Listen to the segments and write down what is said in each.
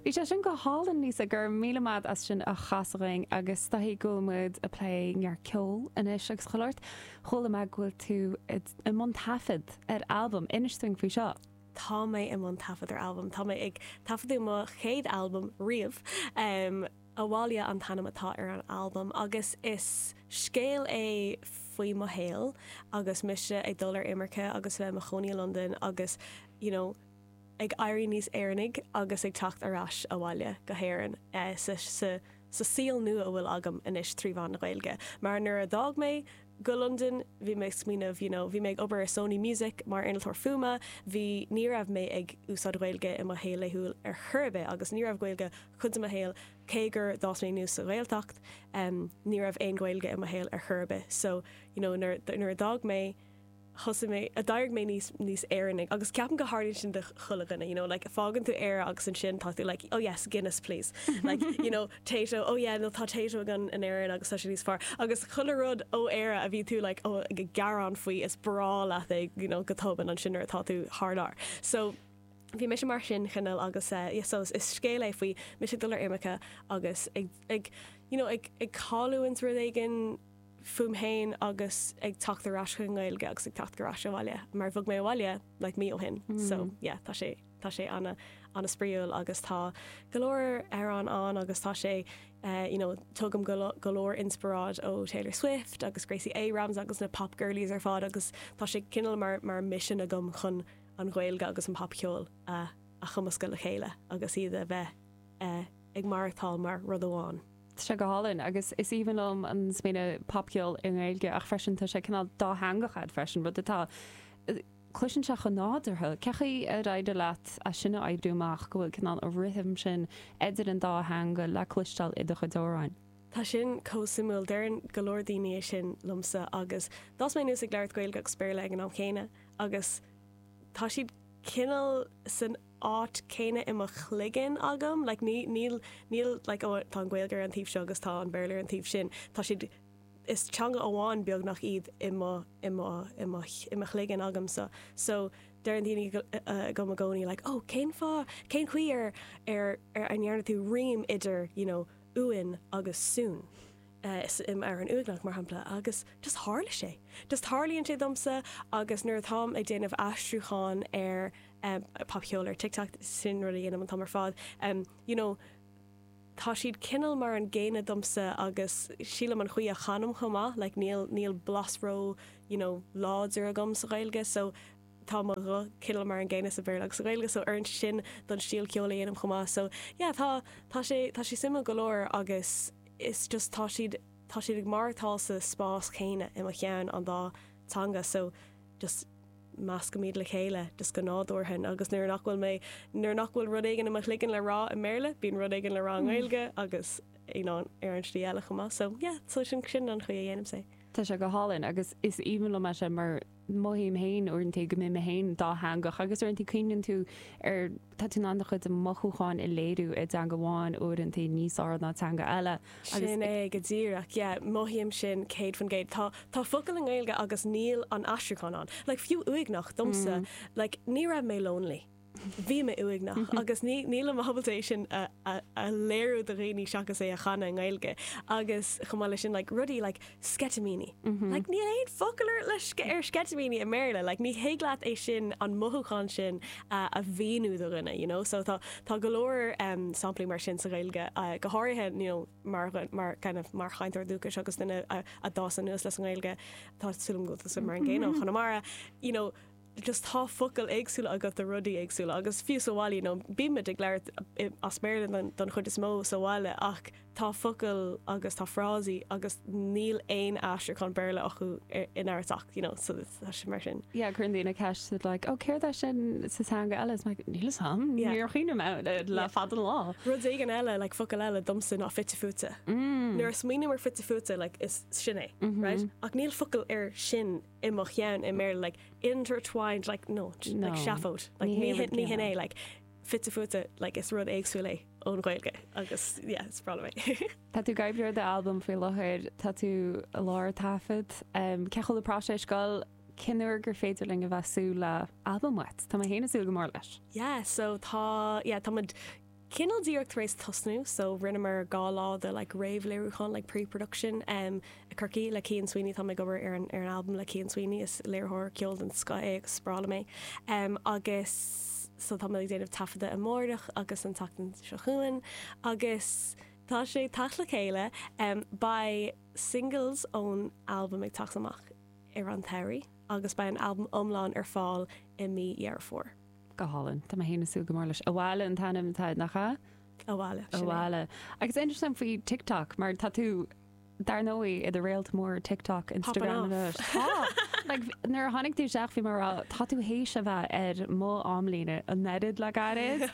Bhí sé sin go hálainn, Lisa, go raibh míle maith ad as sin a chasadh dúinn agus is dóigh go bhfuil muid ag plé neart ceoil anois agus chuile shórt. Chuala mé go bhfuil tú i mbun taifead ar albam, inis dúinn faoi seo. Tá mé i mbun taifead ar albam, tá mé ag taifeadadh mo chéad albam riamh. Abhaile an t-ainm atá ar an albam agus is scéal é faoi mo shaol agus mise ag dul ar imirce agus bheith i mo chónaí i Londain agus you know, ag éirí níos Éireannaigh agus ag teacht ar ais abhaile go hÉirinn sa saol nua a bhfuil agam anois trí mheán na Gaeilge. Mar nuair a d'fhág mé go Londain, bhí mé ag smaoineamh you know bhí mé ag obair i Sony Music mar innealtóir fuaime, bhí, ní raibh mé ag úsáid Gaeilge i mo shaol laethúil ar chor ar bith agus ní raibh Gaeilge cuid de mo shaol, cé gur d'fhás mé aníos sa Ghaeltacht, em ní raibh aon Ghaeilge i mo shaol ar chor ar bith so you know nuair a d'fhág mé, thosaigh mé, a d'éirigh mé níos, níos Éireannaigh, agus ceapaim go tharlaíonn sin do chuile dhuine, you know, like, fágann tú Éire agus ansin tá tú, like, oh yes, Guinness please, like, you know, Tayto, oh yeah, no, tá Tayto againn in Éirinn agus tá sé níos fearr, agus chuile rud ó Éire a bhí tú, like, oh, ag gearán faoi, is breá leat é, you know, go tobann ansin nuair atá tú thar lear. So, bhí mise mar sin, cineál, agus eh, yeah, so, is scéal é faoi mise ag dul ar imirce agus ag, ag, you know, ag, ag cailliúint rud éigin, fúm féin agus ag teacht ar ais chuig an nGaeilge agus ag teacht ar ais abhaile mar bhog mé abhaile like mí ó shin so yeah tá sé tá sé ana ana spraíúil agus tá go leor amhrán ann agus tá sé eh you know tugaim go le go leor inspioráid ó Taylor Swift agus Gracie Abrams agus na pop girlies ar fad agus tá sé cineál mar mar mission agam chun an Ghaeilge agus an popcheol a a chumascadh le chéile agus iad a bheith eh ag maireachtáil mar rud amháin. Tá sé go hálainn agus is aoibhinn liom an smaoineamh popcheol i nGaeilge ach freisin tá sé cineál dátheangach agat freisin, rud atá, cloiseann sé chomh nádúrtha. Cén chaoi ar éirigh leat é sin a oibriú amach, go bhfuil cineál an rithim sin idir an dá theanga le cloisteáil i do chuid amhráin? Tá sin chomh suimiúil, deireann go leor daoine é sin liomsa agus d'fhás mé aníos ag labhairt Gaeilge agus Béarla ag an am chéanna agus tá siad cineál san áit céanna i mo chloigeann agam, like ní, níl, níl like oh tá an Ghaeilge ar an taobh seo agus tá an Béarla ar an taobh sin, tá siad, is teanga amháin beagnach iad i mo, i mo, i mo, i mo chloigeann agamsa. So deireann daoine dom i gcónaí like oh cén fáth, cén chaoi ar, ar, ar a ndearna tú rím idir you know uain agus soon? ar an uaigneach, mar shampla, agus just tarlaíonn sé. Just tarlaíonn sé domsa agus nuair atáim ag déanamh aistriúcháin ar popcheol ar TikTok, sin rud a dhéanaim an t-am ar fad, you know, tá siad cineál mar an gcéanna domsa agus sílim an chaoi a chanaim chomh maith, like níl, níl blas ró, you know, láidir agam sa Ghaeilge so tá mo ghuth cineál mar an gcéanna sa Bhéarla agus sa Ghaeilge so oireann sé sin don stíl ceoil a dhéanaim chomh maith so yeah tá, tá sé, tá sé suimiúil go leor agus. is just tá siad tá siad ag maireachtáil sa spás céanna i mo cheann an dá teanga so just meascaimid le chéile just go nádúrtha agus nuair nach bhfuil mé nuair nach bhfuil rud éigin i mo chloigeann le rá i mBéarla bíonn rud éigin le rá i nGaeilge agus you know ar an slí eile chomh maith so yeah so sin sin an chaoi a dhéanaim sé. Tá sé go hálainn agus is aoibhinn liom é sin mar mothaím féin uaireanta go mbím féin dátheangach agus uaireanta cuimhneann tú ar, tá tú in ann do chuid mothúchán a léiriú i dteanga amháin, uaireanta níos fearr ná teanga eile agus. Sin é go díreach, yeah, mothaím sin céad faoin gcéad. Tá, tá focail i nGaeilge agus níl an aistriúchán ann, like fiú uaigneach, domsa, like ní raibh mé lonely. Bhí mé uaigneach agus níl mé ábalta é sin a léiriú do dhaoine seachas é a chanadh i nGaeilge agus chomh maith leis sin like rudaí like sceitimíní. Like níl aon focal ar le ar sceitimíní i mBéarla. Like ní thig leat é sin, an mothúchán sin a mhíniú do dhuine you know. So tá tá go leor em samplaí mar sin sa Ghaeilge go háirithe you know mar mar kind of mar chainteoir dúchais agus duine a d'fhás anuas le sa Ghaeilge tá súil agam go bhfuil tusa mar an gcéanna ó Chonamara you know Just tá focail éagsúla agat do rudaí éagsúla agus fiú sa bhaile, you know, bímid ag labhairt as Béarla don, don chuid is mó sa bhaile ach tá focail agus tá frásaí agus níl aon aistriúchán Béarla acu in aon chor ach, you know, so it's, tá sé mar sin. Yeah, cuireann daoine ceist, they're like, oh céard é sin sa teanga eile? It's like, níl 'fhios a'm, Yeah. níor chuimhnigh mé air le Yeah. fada an lá. Rud éigin eile, like focail eile domsa ná fite fuaite. Nuair a smaoiním ar fite fuaite, like is, sin é, right? Ach níl focal ar sin. i mo cheann, i mBéarla, like, intertwined, like, no, like, seafóid, like, ní hin, ní hin é, like, fite fuaite, like, is rud éagsúil é ón Ghaeilge, agus, yeah, is breá liom é. Tá tú ag obair ar d'albam faoi láthair, tá tú i lár taifead, cén chaoi a bhfuil an próiseas ag goil, cén uair gur féidir linn a bheith ag súil le albam uait? Tá mé fhéin ag súil go mór leis. Yeah, so tá, yeah, táimid. cineál díreach tar éis tosnú so rinneamar dhá lá de like réamhléiriúchán like pre-production em i gCorcaigh le Cian Sweeney táim ag obair ar an ar an albam le Cian Sweeney is léiritheoir ceoil den scoth é agus is breá liom é em agus so táimid ag déanamh taifeadadh amárach agus an tseachtain seo chugainn agus tá sé ag teacht le chéile em beidh singles ón albam ag teacht amach i rith an tsamhraidh agus beidh an albam iomlán ar fáil i mí Dheireadh Fómhair. Go hálainn. Tá mé féin ag súil go mór leis. Abhaile an t-ainm atá air, nach ea? Amhala, sin é. Abhaile. Agus interesting faoi TikTok, mar tá tú, dar ndóigh, i do réalt mhór TikTok, Instagram, Popping off. tá. Like, nuair a tháinig tú isteach bhí mé ag rá, tá tú th'éis a bheith ar mo amlíne a neart le gairid.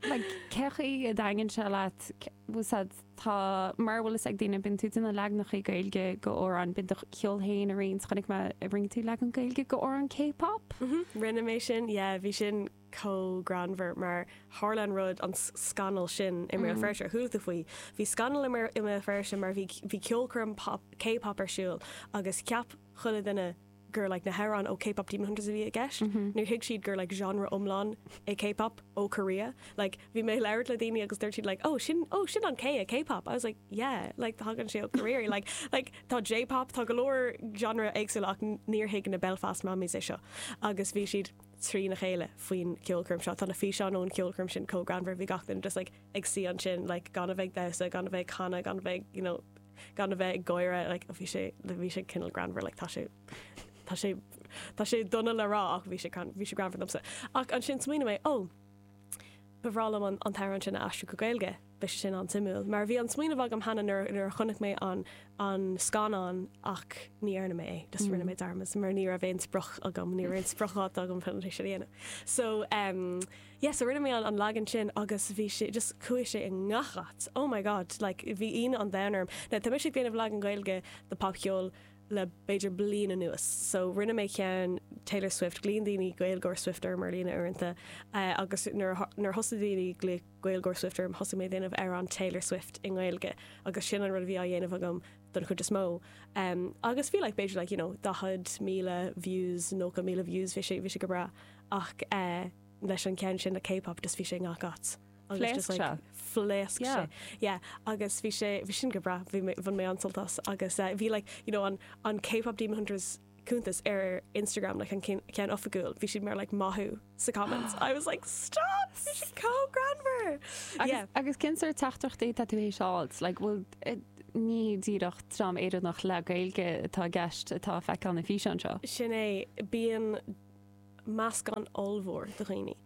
Like, cé chaoi a dtaitníonn sé leat, c- bhfuil said, Tá, mara bhfuil a fhios ag daoine, bíonn tú ag déanamh leaganachaí Gaeilge go amhráin, bíonn tú do cheol féin a roinnt, chonaic mé, rinne tú leagan Gaeilge go amhrán K-pop? Mhm, rinne mé sin, yeah, bhí sin chomh greannmhar mar tharla an rud, an scannal sin i mBéal Feirste ar chuala tú faoi. Bhí scannal i mBéal Feirste mar bhí, bhí ceolchoirm K-pop ar siúl agus cheap chuile dhuine, gur na hamhráin ó K-Pop Demon Hunters a bhí i gceist, níor thuig siad gur genre iomlán é K-Pop ó Korea. Bhí mé ag labhairt le daoine agus dúirt siad, oh, sin an K i K-Pop. I was like, yeah, thagann sé ó Korea. Tá J-Pop, tá go leor genres éagsúla ach níor thuig na Belfast Mammys é seo agus bhí siad trína chéile faoin cheolchoirm seo. Tá na físeáin ón cheolchoirm sin chomh greannmhar, bhí gach duine just ag suí ansin gan a bheith ag damhsa, gan a bheith ag canadh, gan a bheith, you know, gan a bheith ag gáire, like bhí sé, bhí sé cineál greannmhar, like tá sé, tá sé, tá sé dona le rá ach bhí sé, bhí sé greannmhar domsa. Ach ansin smaoinigh mé, ó, ba bhreá liom an t-amhrán sin a aistriú go Gaeilge, beidh sé sin an-suimiúil. Mar bhí an smaoineamh agam cheana nuair, nuair a chonaic mé an, an scannán ach ní dhearna mé é, just rinne mé dearmad mar ní raibh aon sprioc agam, ní raibh aon spriocdháta agam chun é sin a dhéanamh. So, um. Yes, so rinne mé an leagan sin agus bhí sé, just chuaigh sé i ngach áit, oh my god, like bhí ionadh an domhain orm. Now, tá mé ag déanamh leagan Gaeilge de popcheol le b'fhéidir bliain anuas, so rinne mé ceann Taylor Swift, ghlaoigh daoine Gaeilgeoir Swift orm ar líne uaireanta, agus nuair a, nuair a thosaigh daoine ag glaoch Gaeilgeoir Swift orm thosaigh mé ag déanamh amhráin Taylor Swift i nGaeilge, agus sin an rud a bhí á dhéanamh agam don chuid is mó. Agus bhí like b'fhéidir like, you know, 40,000 views, 90,000 views, bhí sé, bhí sé go breá. ach leis an cheann sin le K-pop just bhí sé i ngach áit. Phléasc sé. Phléasc sé. Yeah. Agus bhí sé, bhí sin go breá, bhí mé, bhain mé an-sult as. Agus bhí like, you know, an, an K-pop Demon Hunters cuntas ar Instagram, like an cin, ceann oifigiúil, bhí siad mar like maith thú sa comments. I was like, stop! Bhí siad chomh greannmhar! Yeah. Agus, agus cén sórt teachtaireachtaí atá tú th'éis a fháilt? Like, bhfuil, ní díreach dream Éireannach le Gaeilge atá i gceist atá ag feiceáil na físeáin seo. Sin é, bíonn, meascán ollmhór de dhaoine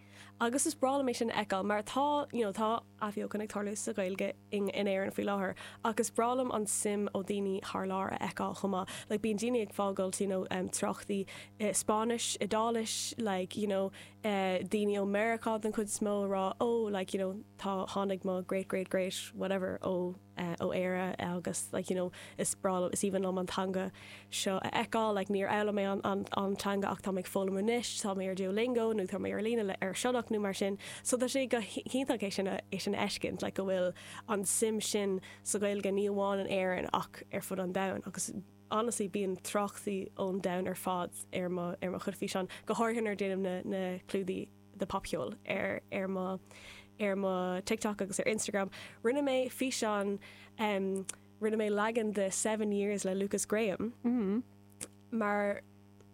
agus is breá liom é sin a fheiceáil mar tá, you know, tá athbheochan ag tarlú sa Ghaeilge in Éirinn faoi láthair ach is breá liom an suim ó daoine thar lear a fheiceáil chomh maith, like bíonn daoine ag fágáilt you know tráchtaí i Spáinnis, Iodáilis like you know eh daoine ó Mheiriceá den chuid is mó ag rá oh like you know tá, tháinig mo great great great whatever ó. eh, ó Éire, eh, agus like, you know, is breá liom, is aoibhinn liom an teanga seo a fheiceáil, like, níor fhoghlaim mé an, an, an teanga ach tá mé ag foghlaim anois, tá mé ar Duolingo nó tá mé ar líne le, ar Sionnach nó mar sin, so tá sé go hiontach é sin a, é sin a fheiscint, like, go bhfuil an suim sin sa Ghaeilge ní amháin in Éirinn ach ar fud an domhain agus honestly bíonn tráchtaí ón domhain ar fad ar mo, ar mo chuid físeán, go háirthe nuair déanaim na, na clúdaigh. de popcheol ar ar mo ar mo TikTok agus ar Instagram. Rinne mé físeán em rinne mé leagan de Seven Years le Lukas Graham mar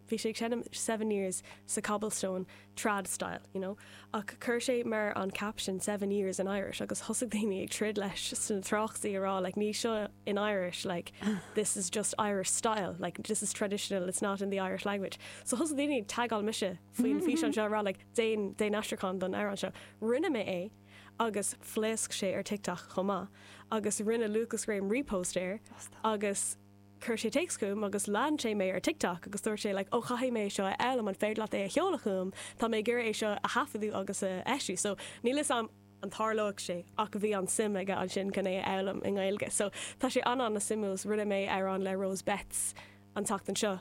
bhí sé ag seinm Seven Years sa cobblestone trad style you know ach chuir sé mar an caption Seven Years in Irish agus thosaigh daoine ag troid leis sna tráchtaí a rá like níl seo in Irish like this is just Irish style like this is traditional it's not in the Irish language so thosaigh daoine ag tagáil mise faoin bhfíseán seo a rá like déan, déan aistriúchán don amhrán seo. Rinne mé é agus phléasc sé ar TikTok chomh maith agus rinne Lukas Graham repost air agus chuir sé téacs chugam agus lean sé mé ar TikTok agus dúirt sé like 'ó chaithfidh mé é seo a fhoghlaim, an féidir leat é a sheoladh chugam, tá mé ag iarraidh é seo a thaifeadadh agus a eisiú'. So níl 'fhios a'm an dtarlóidh sé ach bhí an suim aige ansin chun é a fhoghlaim i nGaeilge. So tá sé an-an-suimiúil. Rinne mé amhrán le Rose Betts an tseachtain seo.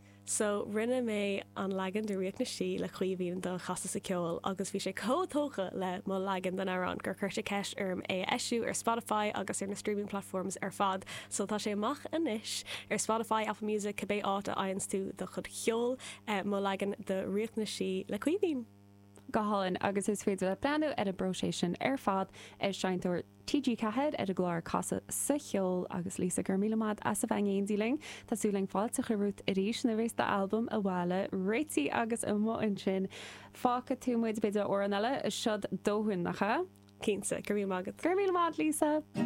So, rinne mé an leagan de Ríocht na Sí le Caoimhín do Chasadh sa Cheol agus bhí sé chomh tógtha le mo leagan den amhrán gur chuir sé ceist orm é a eisiú ar Spotify agus ar na streaming platforms ar fad. So, tá sé amach anois ar Spotify, Apple Music, cibé áit a fhaigheanns tú do chuid cheoil. Mo leagan de Ríocht na Sí le Caoimhín. Go hálainn, agus is féidir leat breathnú ar an bpróiseas sin ar fad ar Seinnteoir TG4 ar an gclár Casadh sa Cheol. Agus Lisa, go raibh míle maith as a bheith in éindí linn. Tá súil againn fáilte a chur romhat arís nuair a bheas d'albam abhaile réitithe agus amuigh ansin. Fágfaidh tú muid b'fhéidir le amhrán eile, seod dóthain nach ea? Cinnte, go raibh míle maith agat. Go raibh míle maith agat Lisa!